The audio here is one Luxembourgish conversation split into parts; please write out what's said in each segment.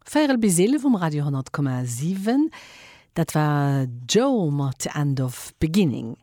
Véierel bis eelef um Radio 100,7. Dat war Joe mat The End of Beginning.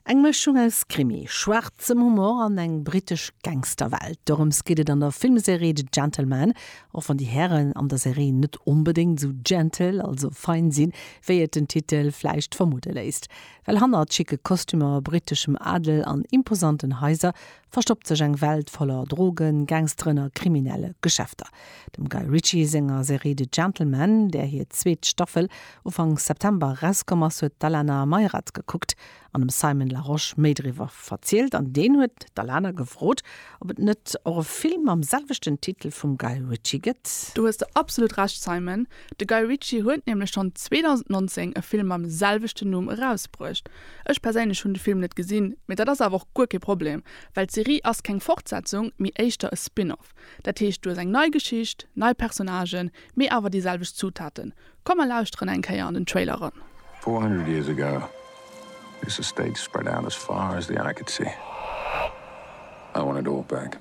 Eng Mëschung aus Krimi, schwaarzem Humor an eng brittesch Gangsterwelt, dorëms geet et an der Filmserie The Gentlemen, och wann déi Hären an der Serie net onbedéngt esou gentle, also fein, sinn, wéi et den Titel vläicht vermudde léisst. Well hannert schicke Kostümer, britteschem Adel an imposanten Haiser verstoppt sech eng Welt voller Drogen, Gangsteren a kriminelle Geschäfter. Dem Guy Ritchie senger Serie The Gentlemen, där hir zweet Staffel Ufank September erauskomm ass, huet d'Alana Mayrat gekuckt an dem Simon Larosche méi driwwer verzielt an deen huet d'Alana gefrot, ob et net och e Film mam selwechten Titel vum Guy Ritchie gëtt. Do hues de absolut Recht, Simon, de Guy Ritchie huet nämlech schonn 2019 e Film mam selwechten Numm erausbruecht. Ech perséinlech hunn de Film net gesinn, mee dat ass awer och guer kee Problem, well d'Serie ass keng Fortsetzung, mee éischter e Spin-off. Dat heescht, du hues eng nei Geschicht, nei Personnagen, mee awer déi selwecht Zutaten. Komm mer lauschteren eng Kéier an den Trailer eran. Four hundred years ago, this estate spread out as far as the eye could see. I want it all back.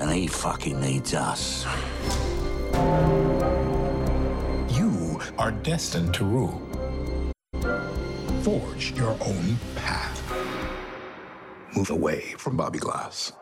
and he fucking needs us. You are destined to rule. Forge your own path. Move away from Bobby Glass.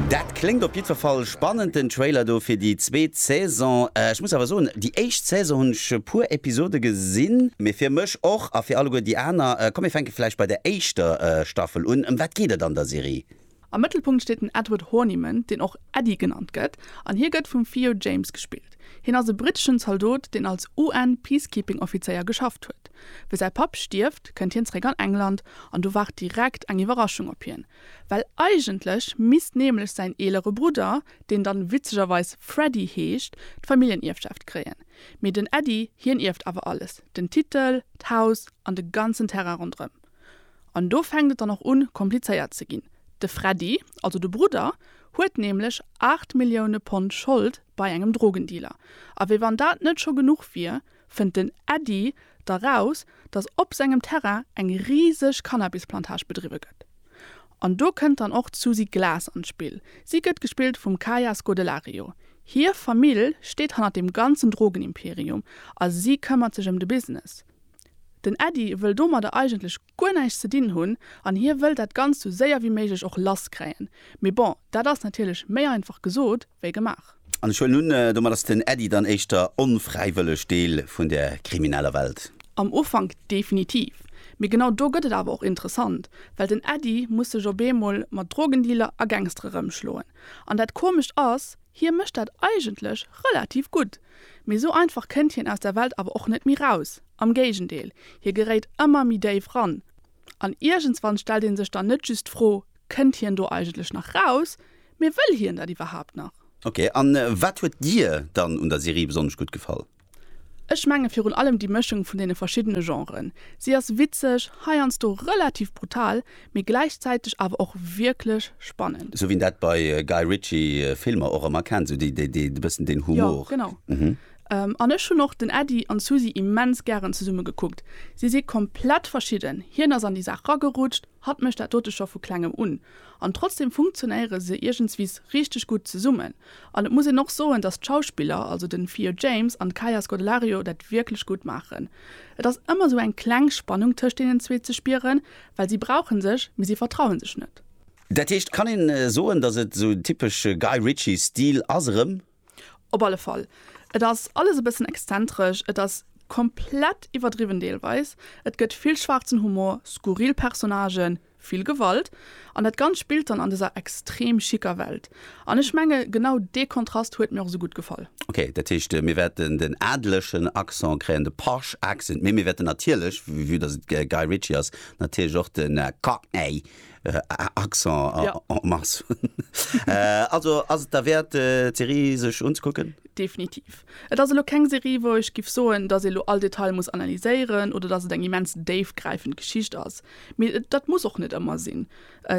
Dat kléngt op jiddwer Fall spannend, den Trailer do fir déi zweet Saison. Ech muss awer soen, déi éischt Saison hunn ech e puer Episode gesinn, mee fir mech och a fir alleguer déi aner, komm mir fänke vläicht bei der éischter Staffel un. Ëm wat geet et an der Serie? Am Mëttelpunkt steet den Edward Horniman, deen och Eddie genannt gëtt, an hie gëtt vum Theo James gespillt. Hien ass e britteschen Zaldot, deen als UN-Peacekeeping-Offizéier geschafft huet. Wéi säi Papp stierft, kënnt hien zeréck an England, an do waart direkt eng Iwwerraschung op hien, well eigentlech misst nämlech säin eelere Brudder, deen dann witzegerweis Freddie heescht, d'Familljenierfschaft kréien. Mee den Eddie, hien ierft awer alles, den Titel, d'Haus an de ganzen Terrain ronderëm. An do fänkt et dann och un, komplizéiert ze ginn. De Freddy, also de Brudder, huet nämlech 8 Millioune Pond Schold bei engem Drogendealer. A wéi wann dat net scho genuch wier, fënnt den Äddi da raus, dass op sengem Terrain eng riseg Cannabisplantage bedriwwe gëtt. An do kënnt dann och d'Susi Glas an d'Spill. Si gëtt gespillt vum Kaya Scodelario. Hir Famill steet hanner deem ganzen Drogenimperium a si këmmert sech ëm de Business. Den Äddi wëll domadder eigentlech guer näischt ze dinn hunn an hie wëll dat Ganzt sou séier wéi méiglech och lass kréien. Mee bon, dat ass natierlech méi einfach gesot wéi gemaach. An ech huelen un, domat ass den Äddi dann éischter onfräiwëlleg Deel vun der krimineller Welt. Am Ufank definitiv. Mee genau do gëtt et awer och interessant, well den Äddi muss sech op eemol mat Drogendealer a Gangstere rëmschloen. An dat komescht ass, hie mécht dat eigentlech relativ gutt, Mee sou einfach kënnt hien aus der Welt awer och net méi raus, am Géigendeel, hie geréit ëmmer méi déif ran. An iergendswann stellt een sech dann net just d'Fro, kënnt hien do eigentlech nach raus, mee wëll hien dat iwwerhaapt nach? Ok, a wat huet dir dann un der Serie besonnesch gutt gefall? Ech menge virun allem déi Mëschung vun deene verschiddene Genren. Si ass witzeg, heiansdo relativ brutal, mee gläichzäiteg awer och wierklech spannend. Sou wéi een dat bei Guy Ritchie Filmer och ëmmer kennt, sou déi déi e bëssen deen Humor. Jo, genau. An ech hunn och den Äddi an d'Susi immens gären zesumme gekuckt. Si si komplett verschidden, hien ass an déi Saach ragerutscht, hatt mécht dat dote scho vu klengem un. An trotzdeem funktionéiere se iergendswis richteg gutt zesummen. An et muss een och soen, datt d'Schauspiller, also den Theo James an d'Kaia Scodelario dat wierklech gutt maachen. Et ass ëmmer sou eng kleng Spannung tëscht deenen zwee ze spieren, Well si brauchen sech, mee si vertrauen sech net. Dat heescht, kann een soen, dass et esou typesch Guy Ritchie Stil ass erëm? Op alle Fall. Et ass alles e bëssen exzentresch, et ass komplett iwwerdriwwen deelweis, et gëtt vill schwaarzen Humor, skurril Personnagen, vill Gewalt, an dat Ganzt spillt dann an dëser extrem schicker Welt. An ech menge genau dee Kontrast huet mir och esou gutt gefall. Ok, dat heescht mir wäerten den adlechen Accent kréien, de posh accent, mee mir wäerten natierlech, vue dass et Guy Ritchie ass, natierlech och de cockney Accent en masse hunn. Also ass et derwäert d'Serie sech unzekucken? Definitiv. Et ass elo keng Serie wou ech giff soen, dass ee lo all Detail muss analyséieren oder dass et eng immens déifgräifend Geschicht ass, mee dat muss och net ëmmer sinn.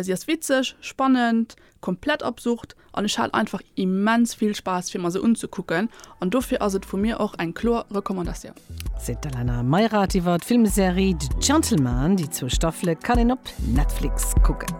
Si ass witzeg, spannend, Komplett absurd an ech hat einfach immens vill Spaass fir mer se unzekucken an dofir ass et vu mir och eng kloer Recommandatioun. Seet d'Alana Meirath iwwer d'Filmserie The Gentleman. Déi zwou Staffele kann een op Netflix kucken.